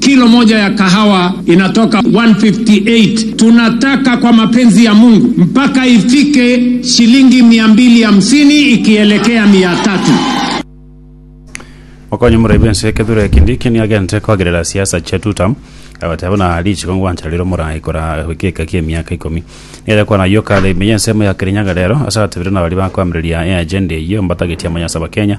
Kilo moja ya kahawa inatoka 158 tunataka kwa mapenzi ya Mungu mpaka ifike shilingi mia mbili hamsini ikielekea mia tatu. Okonye omorwai bw'ense Kithure Kindiki niagente koagerera siasa chia two term agotea buna richiko ngwancha rire omorai kora egeka kia emiaka ikomi niere kwana ayio kare ime y'ensemo ya Kirinyaga rero ase agatebire na baria bakoamereria eagenda eyio mbatagete amanya ase Abakenya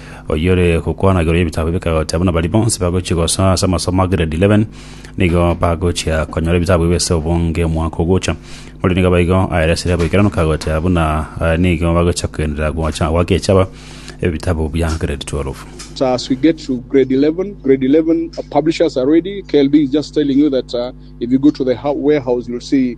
oyore gokwanagerwa y'ebitabu bikagoteba buna baria bonsi bagochia gosoa ase amasomo a grade 11 nigo bagochia konyora ebitabu ebio ase obonge omwaka ogocha. Ore nigo aba igo aeresire boikeranu kagoteba buna eh, nigo bagochia kogenderera gocha gwagechaba ebitabu bia grade 12. But uh, as we get to grade 11, grade 11 uh, publishers are ready. KLB is just telling you that uh, if you go to the warehouse, you'll see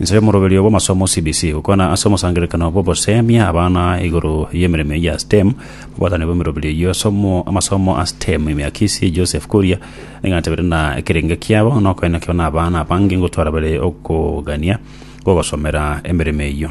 Inse y'omoroberio bw'amasomo CBC gokwana ase omosangererekano bw'ogoseemia abana igoro y'emeremo eyio ya STEM. Mobwatani bw'emeroberio eyio ase omo- amasomo a STEM ime ya Kisii, Joseph Kuria, nigo atebetie ng'a ekerenge kiabo nokoina kebe n'abana abange gotwara bare okogania gw'ogosomera emeremo eyio.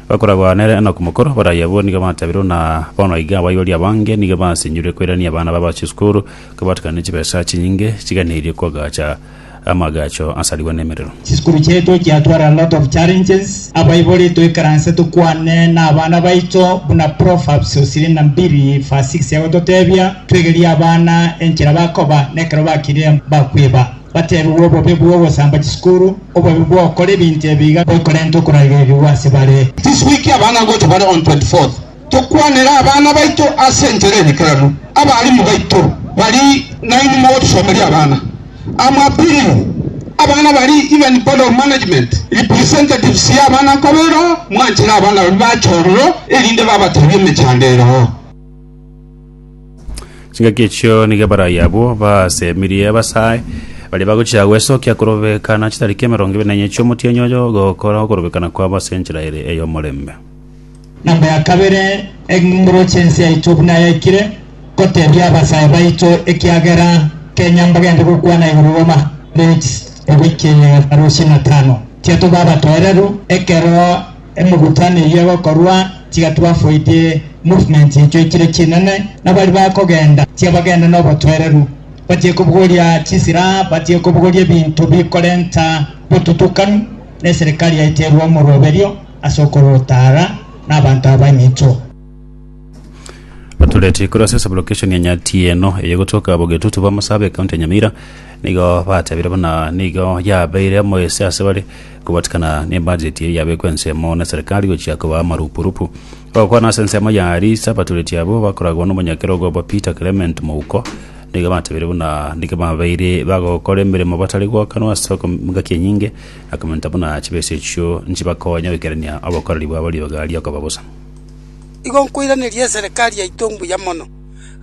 Bakoragwa nere Enoku mokoro, baraia abwo nigo batabirwe, na bono iga abaibori abange nigo basinyurire koirania abana babo chisukuru, kobatukana ne chibesa chinyinge chiganeirie koagacha amaagacho asarigwe nemerero. Chisukuru chiaito chiatwara a lot of challenges, abaibori toikaranse tokwane nabana baito buna Proverbs ishirini na mbili verse six egototebia, twegerie abana enchera bakoba, nekero bakire bakwiba. Bateebigwe obobe bw'ogosamba chisukuru, obobe bw'ogokora ebinto ebi iga bikorenta okoragerigwa ase bare. This week abana nigo tobare on 24th tokwanera abana baito ase enchera enekeranu. Abalimu baito bari nainwe mogotosomeria abana am appealing abana bari even board of management representatives ya abana nkobe ero mwanchire abana baria bache ororo erinde babatebie emechando ero. Chingaki echio nigo abarai abwo basemirie abasae baria bagochia gwesokia korobekana chitariki emerongo ebere na enye chi'omotienyi oyo ogokora okorobekana kwabo ase enchera ere ey'omorembe. Namba ya kabere, engoro chensi yaito buna yaikire gotebia abasae baito, ekiagera kenya mbagende gokwana igoro roma. Rex. Ebikie. Arusi na tano. Tiatoba abatoereru ekero. Emegutano eyio egokorwa tiga twafoidie movement echo echire chinene, na baria bakogenda tiga bagende nobotwereru, batige kobogoria chisilaha, batige kobogoria ebinto bikorenta botutukanu, na eserikari yaito erue omoroberio ase okorota ara nabanto aba eminto. Batureti korwa ase sublocation ya Nyatieno eye gotoka Abogetutu ba Masaaba ecounty ya Nyamira nigo batebire buna nigo yabeire omoyese ase bare Kobatikana nebajeti eye yabekwa ensemo na Serikali gochia koba amarupurupu. Bagokwana ase ensemo ya Arisa, abatoreti abwo bakoragwa nomonyakerogo obo Peter Clement Mouko nigo batebirie buna nigo babeire bagokora emeremo batari gwakanwa ase okom- engaki enyinge na komenta buna chibesa echio nchibakonya goikerania obokoreri bwabo rioga riokoba bosa. Igo nkoiraneria eserekari yaito mbuya mono,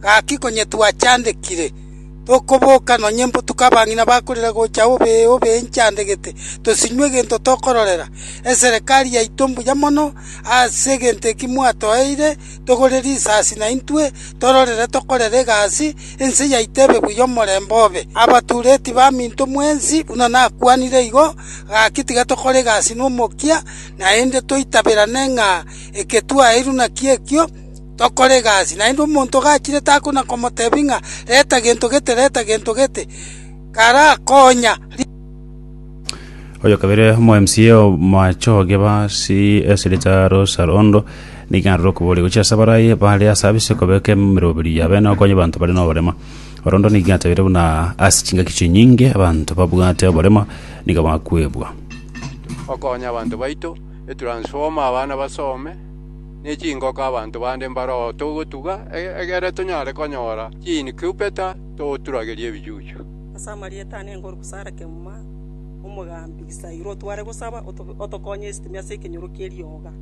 gaki konyetwachandekire. Tokoboka nonye mbotuko abang'ina bakorire gocha obe obe inchandegete, tosinywe egento tokororera. Eserekari yaito mbuya mono ase egento eki mwatoeire, togore risasi naintwe tororere tokorere egasi, ense yaito ebe buya omorembe obe. Abatureti baminto mwensi buna nakwanire igo, gaki tiga tokore egasi nomokia, naende toitaberane ng'a eke twaeirwe nakio ekio. tokore egasi. Naende omonto ogachire takona komotebia ng'a reta gento gete, reta gento gete, karakonya. Oyo kabere omo MCA omoachoge ba CS Richaro Sarondo nigo arure okoboria gochia ase abaraia bare ase abise kobeka emeroberi yabo ene okonya abanto bare noborema. Orondo nigo atebeire buna ase chingaki chinyinge abanto babwate oborema nigo bakwebwa. okonya abanto baito, etransformer abana basome. ne chingoko abanto bande mbaroo togotuga, egere tonyare konyora chiinkubeta togoturageria ebichuchu. Ase amarieta ane ngoru gosara kegima, Omogambi, saira otware gosaba, otokonye esitimia ase ekenyoro kie rioga.